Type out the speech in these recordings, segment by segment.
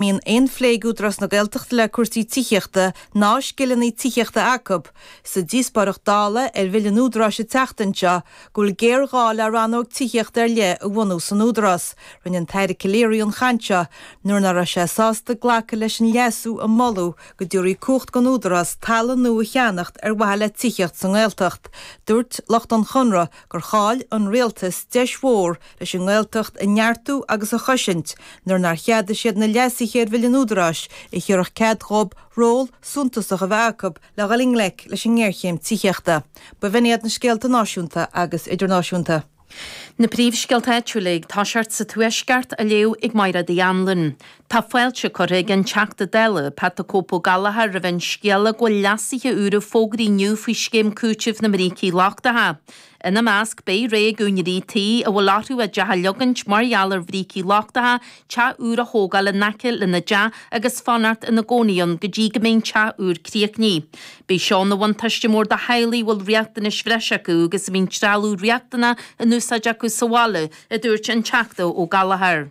mbíonn aon phléigú Údarás na Gaeltachta le cúrsaí tithíochta ná scileanna tithíochta acu. Sa díospóireacht Dála ar Bhille an Údaráis an tseachtain seo go bhfuil géarghá le rannóg tithíochta ar leith a bhunú san Údarás, rinne an tAire Calleary an chaint seo nuair ná raibh sé sásta glacadh leis an leasú a moladh go dtabharfaí cumhacht don Údarás talamh nua a cheannacht ar mhaithe le tithíocht sa nGaeltacht. Dúirt lucht an Chonradh gur chaill an Rialtas deis mhór leis an nGaeltacht a neartú agus a chosaint nuair nár cheadaigh siad na leasuithe ar Bhille an Údaráis a thabharfadh cead dhóibh ról suntasach a bheith acu le dhul i ngleic leis an ngéarchéim tithíochta. B'in iad na scéalta náisiúnta agus idirnáisiúnta. Na príomhscéalta áitiúla ag toiseacht sa tuaisceart a léadh ag Máire Uí Anluain. Tá fáilte curtha ag an Teachta Dála Pat 'The Cope' Gallagher roimh an scéala go bhfuil leasuithe úra fógraithe inniu faoi Scéim Cúitimh na mBrící Lochtacha. Ina measc, beidh rogha ag úinéirí tí a bhfuil orthu a dteach a leagaint mar gheall ar bhrící lochtacha, teach úr a thógáil in aice lena dteach agus fanacht ina gcónaí ann go dtí go mbeidh an teach úr críochnaithe. Beidh seo ina bhuntáiste mór do theaghlaigh a bhfuil riachtanais bhreise acu agus a mbíonn trealamh riachtanach in úsáid acu sa bhaile, a dúirt an Teachta Ó Gallchóir.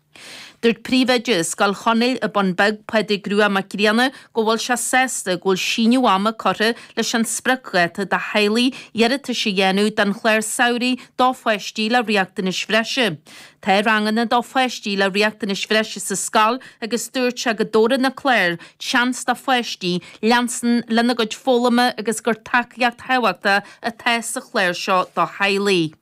Dúirt Príomhoide Scoil Chonaill ar an Bhun Bheag, Pádraig Rua Mac Grianna go bhfuil sé sásta go bhfuil síneadh ama curtha leis an spriocdháta do theaghlaigh iarratais a dhéanamh don chlár samhraidh do pháistí le riachtanais bhreise. Tá ranganna do pháistí le riachtanais bhreise sa scoil agus dúirt sé go dtabharann na cláir seans do pháistí leanstan lena gcuid foghlama agus gur tacaíocht thábhachtach atá sa chlár seo do theaghlaigh.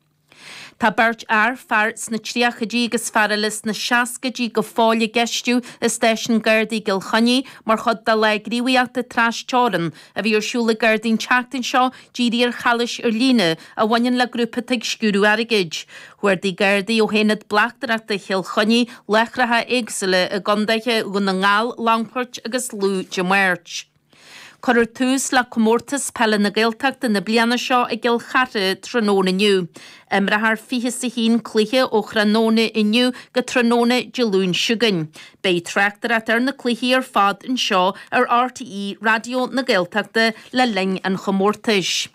Tá beirt fhear, fear sna tríochaidí agus fear eile sna seascaidí, go fóill á gceistiú i Stáisiún Gardaí Chill Chainnigh mar chuid de lá gníomhaíochta trasteorann a bhí ar siúl ag Gardaí an tseachtain seo dírithe ar chalaois ar líne a bhaineann le grúpa atá ag sciúradh airgid. Chuardaigh Gardaí ó hAonad Bleachtaireachta Chill Chainnigh láithreacha éagsúla i gContaetha Dhún na nGall, Longfoirt agus Lú Dé Máirt. Cuireadh tús le Comórtas Peile na Gaeltachta na bliana seo i gCill Chartha tráthnóna inniu. Imreofar fiche 's a haon cluiche ó thráthnóna inniu go tráthnóna Dé Luain seo chugainn. Beidh tráchtaireacht ar na cluichí ar fad anseo ar RTÉ Raidió na Gaeltachta le linn an chomórtais.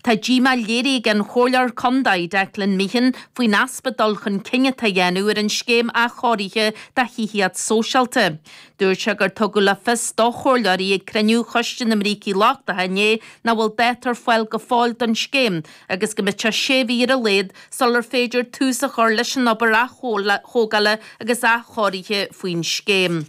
Tá díomá léirithe ag an Chomhairleoir Contae Declan Meehan faoin easpa dul chun cinn atá a dhéanamh ar an scéim athchóirithe do thithíocht sóisialta. Dúirt sé gur tugadh le fios do Chomhairleoirí ag cruinniú Choiste na mBrící Lochtacha inné nach bhfuil dáta ar fáil go fóill don scéim agus go mbeidh sé sé mhí ar a laghad sular féidir tús a chur leis an obair atógála agus athchóirithe faoin scéim.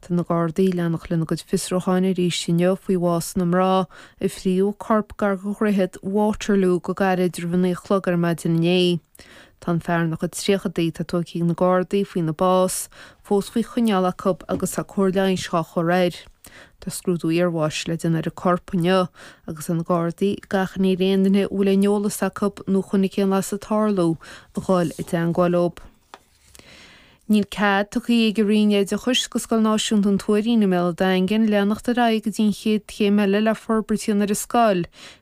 Tá na Gardaí ag leanacht lena gcuid fiosrúcháin arís inniu faoi bhás na mná a fríodh a corp gar go dhroichead Waterloo go gairid roimh a naoi a chlog ar maidin inné. Tá an fear ina chuid tríochadaí atá tóigtha ag na Gardaí faoina bás fós faoi choinneáil acu agus tá cóir leighis dhá chur air. Tá scrúdú iarbháis le déanamh ar a corp inniu agus tá na Gardaí ag achainí ar aon duine a bhfuil aon eolas acu nó a chonaic aon bhlas ag tarlú a dhul i dteangmháil leo. Níl cead tugtha ag an roinn oideachais do Scoil Náisiúnta an Tuairín i mBéal an Daingin leanacht ar aghaidh go dtí an chéad chéim eile le forbairt a dhéanamh ar an scoil,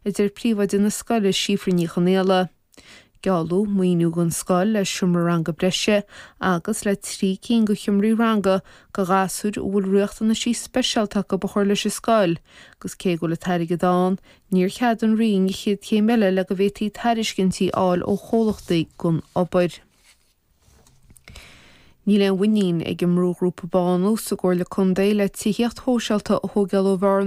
a deir príomhoide na scoile, Síofra Ní Chonaola. Gealladh maoiniú don scoil le seomra ranga breise agus le trí cinn de sheomraí ranga do ghasúir a bhfuil riachtanaisí speisialta acu a chur leis an scoil agus cé go bhfuil an t-airgead ann, níor cheadaigh an roinn an chéad chéim eile le go bhféadfaí tairiscintí a fháil ó chomhlachtaí don obair. Níl aon mhuinín ag an mbrúghrúpa Bánú sa gComhairle Contae le tithíocht shóisialta a thóigeáil ó Bhearna